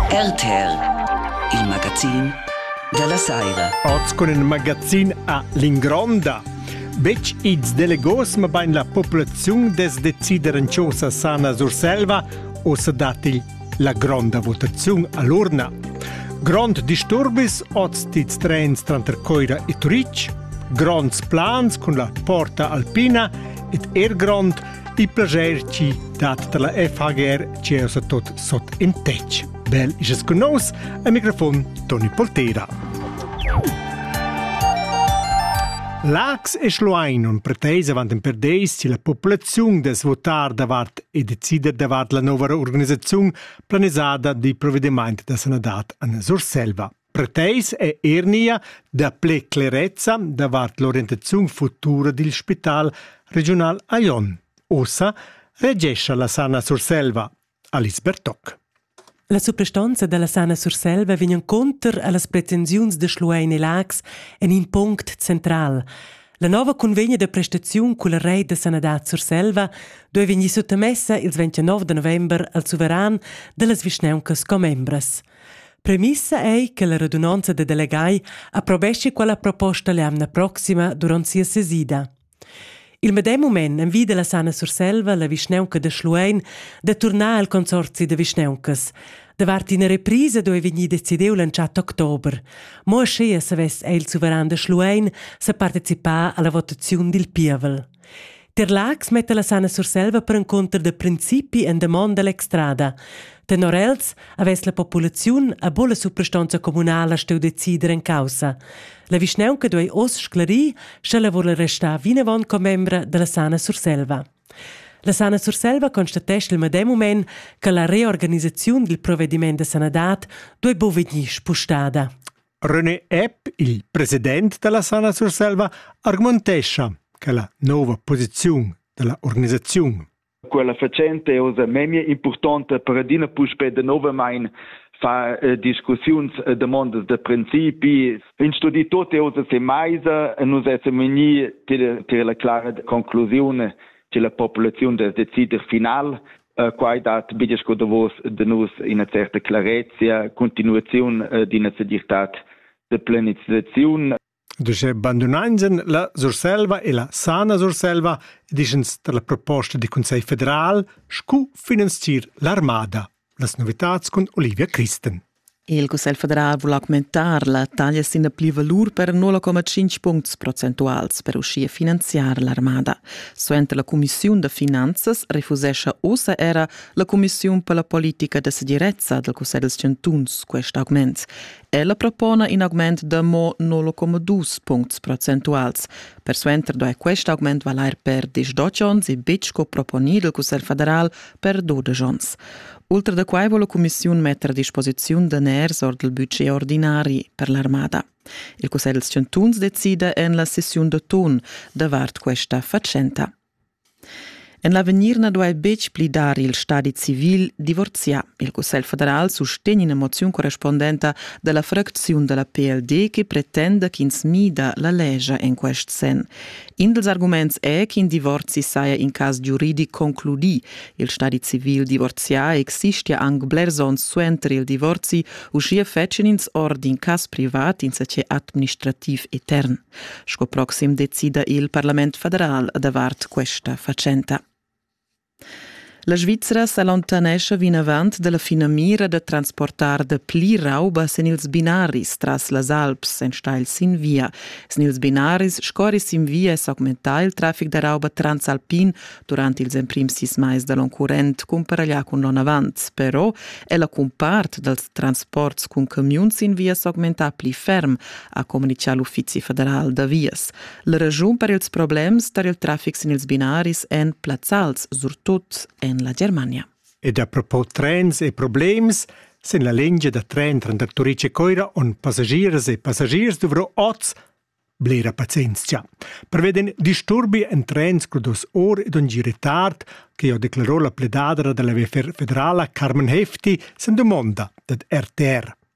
RTL, il magazin dalla saira. Oz cun il magazin a l'ingronda. Betg ids delegos, ma bain la populaziun des decider en chosa sana Surselva o se datti la gronda votaziun all'urna. Grond disturbis oz tids trens tranter Coira e Turic, gronds plans cun la porta alpina ed er grond Ti plager ci dat dalla FHGR che osa tot sot in tec. Bel isas con nos a microfon Toni Poltera. Lax e Schlein un preteis avant in perdeis ci la populaziun des votar davart e decider davart la nova organizzazione planisada di provvedimento da sanadad an Surselva. Per teis è er nia dapple clerezza davart l'orientaziun futura dil spital regiunal Aion. Ossa regescha la Sana Surselva, Alice Bertoc. La suprastanza dalla Sana Surselva vegnan conter allas pretensiuns de Schluein e Lax en in punct central. La nova convegna de prestaziun culla reit de sanadad Surselva doi vegnir suttamessa ils 29 de november al suveran dellas vischnauncas commembras. Premissa ei che la radunonza da delegai approbeschi quella proposta l'emna proxima duront sia sesida. Il medem mument envida la Sana Surselva la vischnaunca da Schluein da turnar al consorzi da vischnauncas. Davart ina reprisa doi vegnir decidiu l'entschatta october. Mo aschia savess il suveran da Schluein sa participar alla votaziun dil pievel. Tier Laax metta la Sanna Surselva per encunter da principi en damonda l'extrada. Tenor els avess la populaziun a bolla suprastonza communala steu decider en caussa. La vischnaunca duei oz sclarir, sche la vul restar vinavon commembra della Sana Surselva. La Sana Surselva constatesce il medem moment che la reorganisaziun dil provvediment da sanadad duei bu vegnir spustada. René Epp, il president dalla Sana Surselva, argumentescha che la nova posiziun dalla organisaziun quella facente è osa memia importante per adina puspè novamain far eh, discussiuns e eh, demandas da principi. In studi tutti osa se maisa e nus essem vegni til la clara conclusione che la popolazione deve decider final Eh, quai dat bia sco da vos da nus ina certa clarezia, continuaziun eh, d'ina segirtad de planizaziun. Duce bandunainsen la Surselva e la Sana Surselva dischens dalla proposta di Consiglio federal scu finanzier l'armada. Las novitats cun Olivia Christen. Il Cussegl federal vul augmentar la taglia sin la plivalur per 0,5 puncts procentuals per uschia finanziar l'armada. Suenter la cumissiun da finanzas refusescha ussa era la cumissiun per la politica da segirezza dal Cussegl dels chantuns quest augment. Ella propona in augment da mo 0,2 puncts procentuals. Persuenter do quest augment valer per 18 onns e betg co proponì dal Cussegl federal per dudesch onns. Ultra da quai vo la cumissiun metter a disposiziun daners ord il budget ordinari per l'armada. Il Cussegl dels chantuns decida en la sessiun d'autun davart questa fatschenta. En l'avegnir na duai betg pli dar il stadi civil divorziar. Il Cussegl federal sustegn ina moziun correspondenta dalla fracziun dalla PLD che pretenda ch'ins mida la legia en quest sen. In dals arguments è ch'in divorzi saja in cas giuridic concludì. Il stadi civil divorzià existia anc blers onns suenter il divorzi, uschia fetschien ins or d'in cas privat insatge administrativ etern. Sco proxim decida il Parlament federal davart questa fatschenta. La Svizra s'allontanescha vinavant da la finamira da transportar da pli rauba sin ils binaris tras las Alps enstagl sin via. Sin ils binaris scorri sin via e s'augmenta il traffic da rauba transalpin durant ils emprims sis mais da l'onn current cumparaglià cun l'onn avant. Però è la cumpart dals transports cun camiun sin via s'augmentà pli ferm, ha communitgà l'Uffizi federal da vias. La raschun per ils problems tar il traffic sin ils binaris èn plazzals, surtut en la Germania. Ed a propos trens e problems, sin la lingia da tren tranter Turitg e Coira on passagiers e passagiers dovro oz blera pazienzia. Preveden disturbi en trens crudos or ed un giri tard, che ho declarò la pledadra della VFR federala Carmen Hefti sen domonda dad RTR.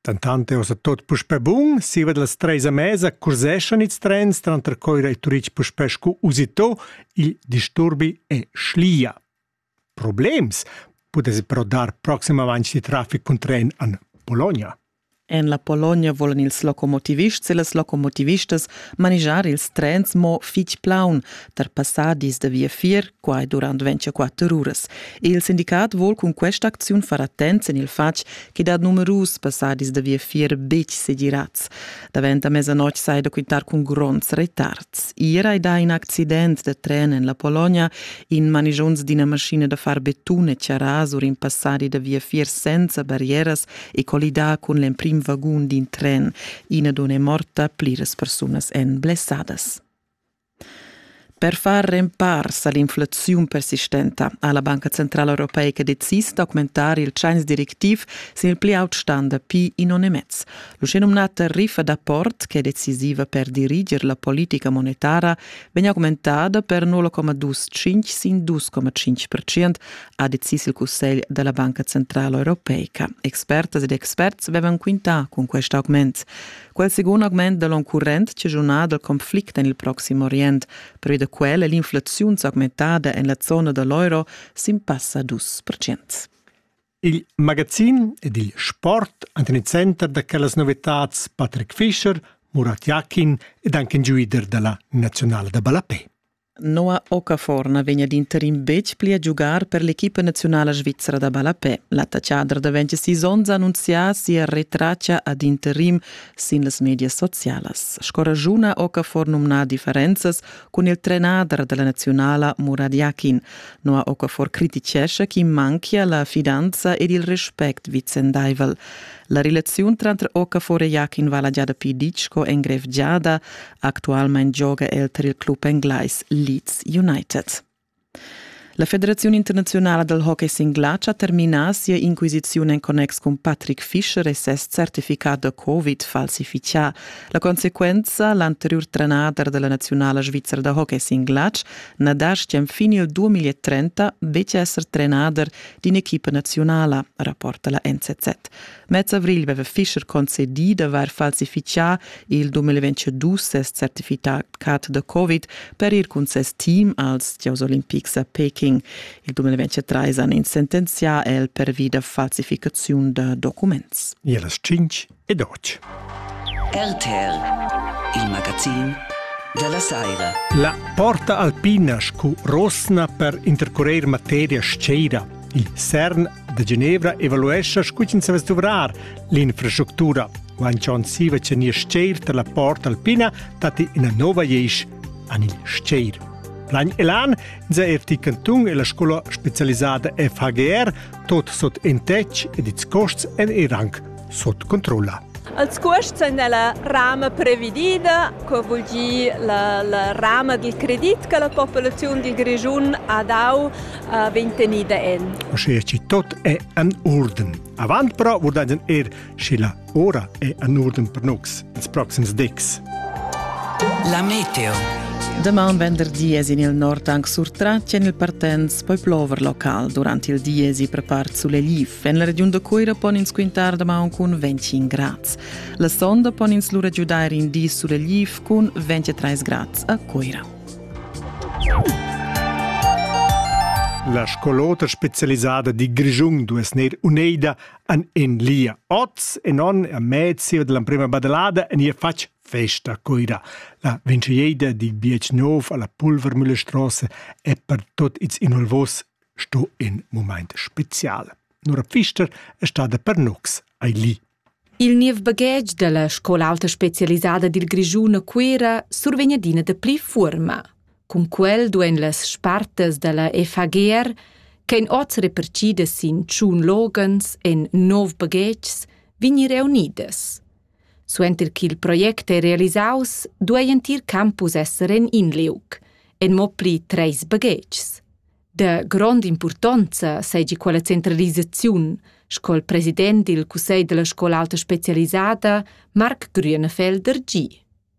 Dentant è ussa tut puspè bun. Siva da las treis a mesa curseschan ils trens tranter Coira e Turitg puspè sco usitò. Il disturbi è schlia. Problems pudess però dar proximamain il traffic cun tren an Bologna. En la Polonia volan ils locomotivists e las locomotivistas manigiar ils trens mo fitg plaun tar passadis da viafier quai durant 24 uras. Il sindicat vuol cun questa acziun far attents en il fatg che dat numerus passadis da viafier betg segirats. Davent a mezzanoc sai da quintar cun gronds retards. Iera è da in accident da tren en la Polonia in manigions d'ina maschina da far betun e charas ur in passadi da viafier senza barrieras e collidà cun l'emprim vagun d'in tren. Ina donna è morta, pliras persunas èn blessadas. Per far rempars a l'inflaziun persistenta ha la Banca centrala europeica decis d'augmentar il tschains directiv sin il pli aut stan dapi in onn e mez. L'uschenumnata riffa d'apport, che è decisiva per diriger la politica monetara, vegn augmentada per 0,25 sin 2,5%, ha decis il Cussegl della Banca centrala europeica. Expertas ed experts vevan quintà cun quest augment. Quel secund augment da l'oncurrent chaschunà dal conflict en il Proxim Orient, pervi da quel è l'inflaziun s'augmentada en la zona da l'euro sin passa 2%. Il magazin ed il sport han tener center da quellas novitads Patrick Fischer, Murat Yakin ed anche in giuider dalla nazionale da ballapè. Noah Okaforna vegn ad interim betg pli a giugar per l'equipa naziunala svizra da ballapè. L'attaccader da 26 onns ha annunzià sia retraccia ad interim sin las medias socialas. Sco ragiuna Okafor numna differenzas cun il trenader da la naziunala Murad Yakin. Noah Okafor criticescha ch'i manchia la fidanza ed il respect vicendaivel. La relaziun tranter Okafor e Yakin vala gia dapi ditg sco engrevgiada, Actualmein gioga el tar il club englais Leeds United. La Federaziun internaziunala dal hockey singlatg ha terminà sia inquisiziun en connex cun Patrick Fischer e ses certificat da Covid falsifichà. La consequenza, l'anteriur trenader da la naziunala svizra da hockey singlatg na dastgia enfin il 2030 betg esser trenader d'in'equipa naziunala, rapporta la NZZ. Mez avrigl veva Fischer concedì d'avair falsifichà il 2022 ses certificat da Covid per ir cun ses team als gieus olimpics a Peking. Il 2023 han ins sentenzià el pervi da falsificaziun da documents. E las 5 e 12. RTL, il magazin della Saira. La porta alpina scu rosna per intercurer materia sceira Il CERN da Genevra evaluescha scu ch'ins savess duvrar l'infrastructura. Guanchon siva cha nia stgeir tar la port alpina datti ina nova iesch an il stgeir. Plagn Elan ins è er di cantung e la scola specialisada FHGR tot sot en tec ed its costs en e rang sut controlla. Al scuost è la rama previdida, co vul dir la, la rama del credit che la popolazione del Grigiun ha dau uh, vegn tenida en. Sche ci tot è an orden. Avant però vurdan er, sche la ora è an orden per nox, ils proxims decs. La meteo. Deman venderdi es in il nord anc surtratg en il Partens poi plover local durant il diesi per part sulegliv. En la regiun da Cuira pon ins quintar damaun cun 25 grads. La sonda pon ins lura giudair in di sulegl cun 23 grads a Cuira. La scolota specialisada di Grischun dues ner uneida an en lia. Oz en on a mezia dell'emprema badalada en ia fac festa coira. La vinciaida di BH9 alla Pulvermühle Strasse è per tot its inolvos sto in mumaint special. Nora Pfister è stada per nux ai li. Il niev baghetg della scola alta specialisada dil Grischun a Cuera survegn adina de pli fuorma. Cun quel duein las spartas della FAGR, che in oz repercidas sin tschun logens en nov baghetgs, vegnir reunidas. Suenter ch'il project ei realisaus, duei entir campus esser en in liug, en mo pli treis baghetgs. De grond'impurtonza seigi quella centralisaziun, sco il president dil cussegl dalla scola alta specialisada, Marc Grünenfelder, gi.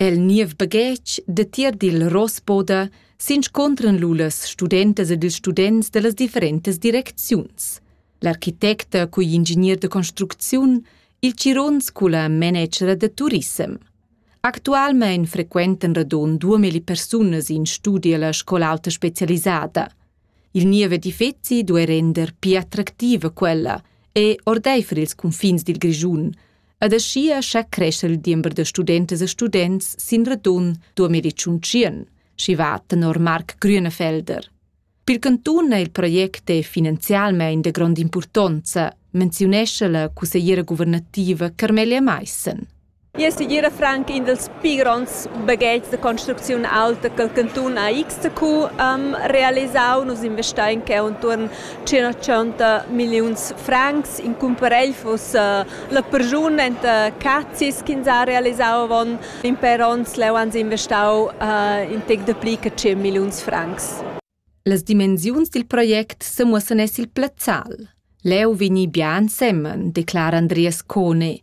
El niev baghetg datier dil Rossboda s'inscuntran lu las studentas ed ils students dallas differentas direcziuns. L'architecta cugl ingegner da construcziun, il Cirons culla managera da turissem. Actualmein frequentan radon 2000 persunas in studi alla scola alta specialisada. Il niev edifeci duei render pli attractiva quella e ordeifer ils cunfins dil Grischun, Ed aschia scha cresce il diember da studentas e students sin radun 2021, schi va tenor Marc Grünefelder. Pil cantun è il project è finanzialmein de grond importanza, menziunesce la cussegliera guvernativa Carmelia Meissen. Io suggere frank in dels pi gronds baghetgs de construcziun alta che il cantun AXTQ um, realisau, nus investein che untuorn chi racchonta milliuns francs. In cumparel fuss la perschun enta cazzis ch'ins ha realisau avon in per onns. Leu han sie investau in tec dapli che tschient milliuns francs. Las dimensiuns dil project semuossan es il plazzal. Leu vegni bia ensemen, declara Andreas Cone.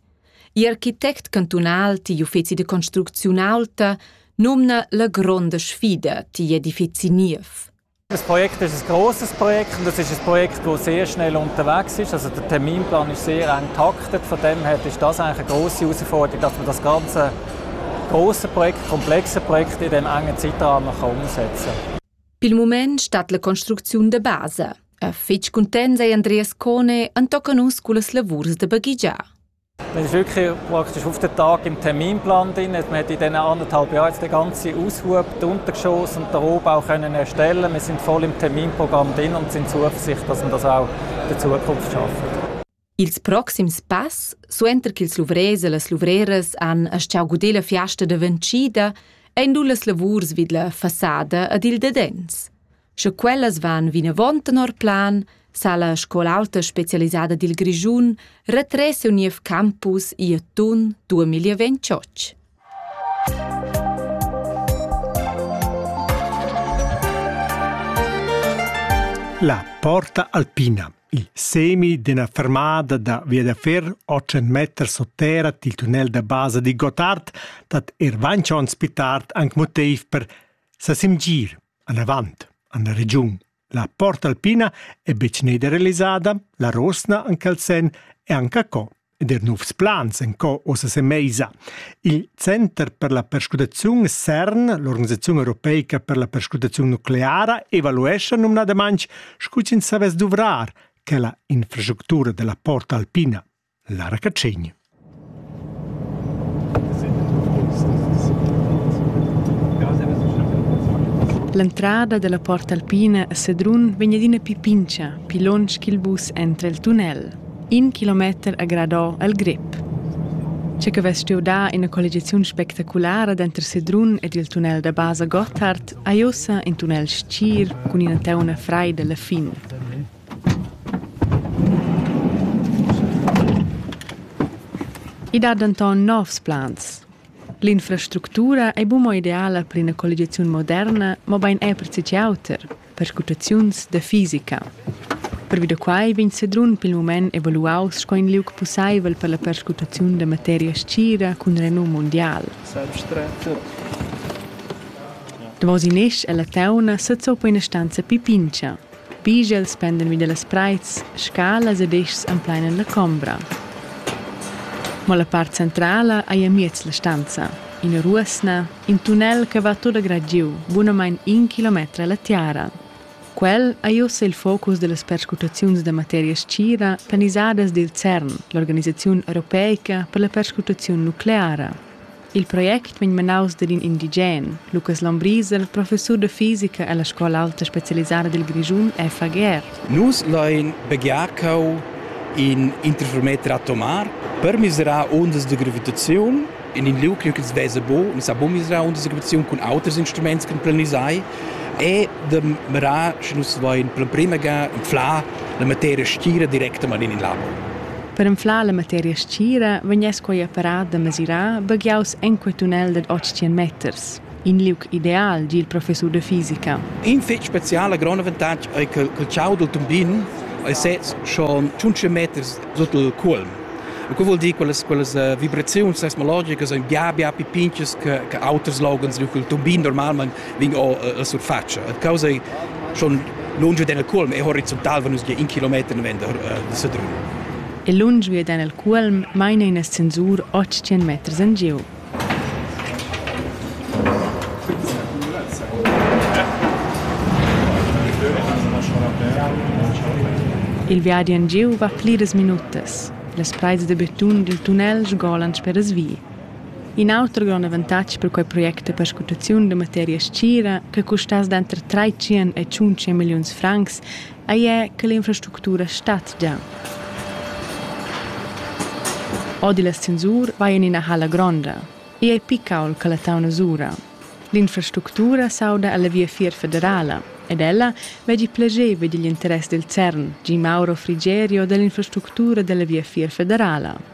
Il architect cantunal digl uffeci de construcziun aulta nomna la gronda sfida digl edifeci niev. Das Projekt ist ein grosses Projekt und es ist ein Projekt, das sehr schnell unterwegs ist. Also der Terminplan ist sehr eng getaktet. Von dem her ist das eigentlich eine grosse Herausforderung, dass man das ganze grosse Projekt, komplexe Projekt in dem engen Zeitrahmen umsetzen kann. Pel mument stat la construcziun da basa. A fitg cuntent ei Andreas Cone entoca nus cullas lavurs da baghegiar. Wir haben wirklich praktisch auf den Tag im Terminplan drin. Wir haben in diesen anderthalb Jahren jetzt den ganzen Aushub, die Untergeschosse und den Rohbau können erstellen. Wir sind voll im Terminprogramm drin und sind zuversichtlich, dass wir das auch in der Zukunft schaffen. Ils proxims pass, suenter ch'ils luvrers e las luvreras han astgau guder la fiasta da ventschida, ein lu las lavurs vid la fassada ed il dadens. Sche quellas van vinavon tenor plan, sa la scola auta specialisada dil Grischun retrer siu niev campus ier tun 2028. La Porta Alpina, il semi d'una fermada da via da fer 800 meter sotterra til tunnel da basa di Gottard dat er vancion spitart anc motiv per sa simgir Anavant han la regiun la Port Alpina e betg nederalisada, la Rosna anc al senn e anca co ed er novs plans en co ossa semeisa. Il Center per la perscrutaziun CERN, l'organisaziun europeica per la perscrutaziun nucleara, evaluescha numnadamain scu ch'ins savess duvrar quella infrastructura della Port Alpina. Lara Catschegn. L'entrada dalla Porta Alpina a Sedrun vegn adina pli pintscha pli lunsch ch'il bus entra el tunnel. In kilometer ha gradò al grep. Che che vess stuiu dar ina colligiaziun spectaculara denter Sedrun ed il tunnel da basa Gotthard, ei ussa in tunnel stgir cun ina teuna freida alla fin. I dat denton novs plans. L'infrastructura ei buca ideala per ina colligiaziun moderna, mobein era per tgi auter, perscrutaziuns da fisica. Pervi da quai vegn Sedrun pil mument evaluaus sco in liug pusseivel per la perscrutaziun da materia scira cun renum mundial. Davos in esch ella teuna sezza per ina stanza pipincha. Pigls pendan vi dallas preits, scalas ed eschs emplainan la combra. Mo la part centrala ei amiez la stanza, ina ruosna, in tunnel che va tut grad giu, bunamein in kilometer alla tiara. Quel ei ussa il focus dallas perscrutaziuns da materia stgira planisadas dil CERN, l'organisaziun europeica per la perscrutaziun nucleara. Il project vegn menaus dad in indigen, Lukas Lombriser, professur da fisica ella scola aulta specialisada dil Grischun FAGR. Nus lein baghiar cheu in interferometer atomar per miserar ondas de gravitaziun. In in liug ch'ins vesa buc, nus sa buc miserar ondas de gravitaziun cun auters instruments ch'en planisai e de mirar, sche nus lein per prima ga inflar la materia stira directamain in labo. Per anflar la materia stgira vegness quei apparat da mesirar baghiaus enqual tunnel dad 800 meters. In liug ideal, di il professur da fisica. In fetg speciala grond avantatg ei che il ciau dal tumbin ei sez schon 500 meters sut il cuolm. E quei vuol dir quelles quelles uh, vibraziuns seismologicas ein bia bia più pinches che che auters logans, il tumbin normalmein vin o la surfatscha. A causa schon lunge den el culm e horizontal van nus gie in kilometer ne vender de Sedrun. E lunge gie den el culm maina in ascensur 800 meters en giu. Il viadi en giu va pliras minutas. Las preis de betun dil tunnel sgolan sper as vi. In auter grond avantatg per quei project è perscrutaziun da materia stgira che custass denter tratschien e tschuntschi milliuns francs, ei è che l'infrastructura stat gia. Odi l'ascensur vai in ina halla gronda. Ei ei picaul che la tauna sura. L'infrastructura s'auda alla viafier federala ed ella veggi plasceva digl interess del CERN, Gi Mauro Frigerio dall'infrastructura della viafier federala.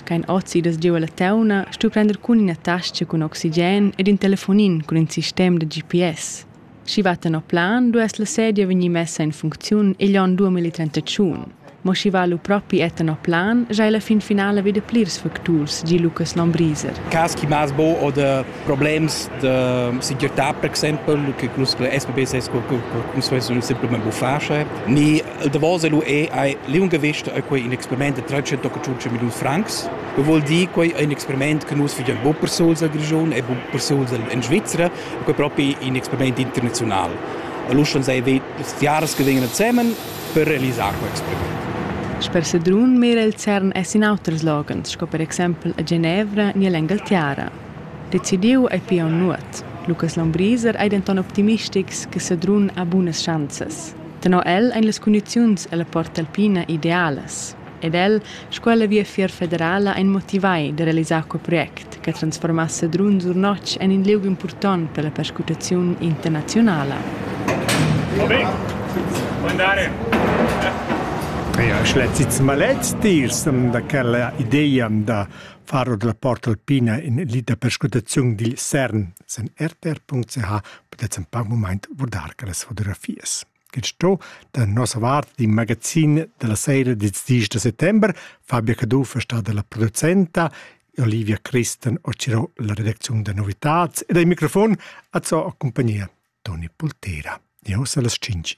Ch'ein ozidas giu ella teuna, stu prender cun ina tascha cun oxigen ed in telefonin cun in sistem da GPS. Sch'i va tenor plan, duess la sedia vegnir messa en funcziun igl onn dua mil trentatschun. Mo sch'i va lu propi è tenor plan, sch'ei la fin finala veda plirs facturs, gi Lucas Lombriser. Cas chi maz bo oder problems da segirtà per exempel che nus SPB sez co nus vessan simplamain buffà sche ni il davos lu è ei liungavisch è quei in experiment da 325 milliun francs che vuol dir quei ein experiment che nus fagen bu per suls al Grischun e bu per suls in Svizra quei proprio in experiment internazional Allora schon sei Jahres gewinnen zusammen per realisar quel experiment. Sper Sedrun mira il CERN es in auters loghens, sco per exempel a Genevra ni all'Engaltiera. Decidiu ei pia nuot. Lucas Lombriser ei denton optimistics che Sedrun ha bunas schanzas. Tenor el ein las cundiziuns ella Porta Alpina idealas. Ed el, sco ella viafier federala, ein motivai da realisar quei project che transformass Sedrun sur notg en in liug impurtont per la perscrutaziun internazionala. Vabbè, andare. Ja, ich letze jetzt mal letzteres da quella idee da far ord la porta alpina in lid da perscrutaziun dil CERN sen rtr.ch podet en pac moment vurdar quellas fotografias. Che sto da nossa vart di magazin della sera di 10 de settembre Fabia Caduff è stata la producenta Olivia Christen ocirò la redazione da novità ed ai microfon azzò a compagnia Toni Pultera. Di hossa las 5.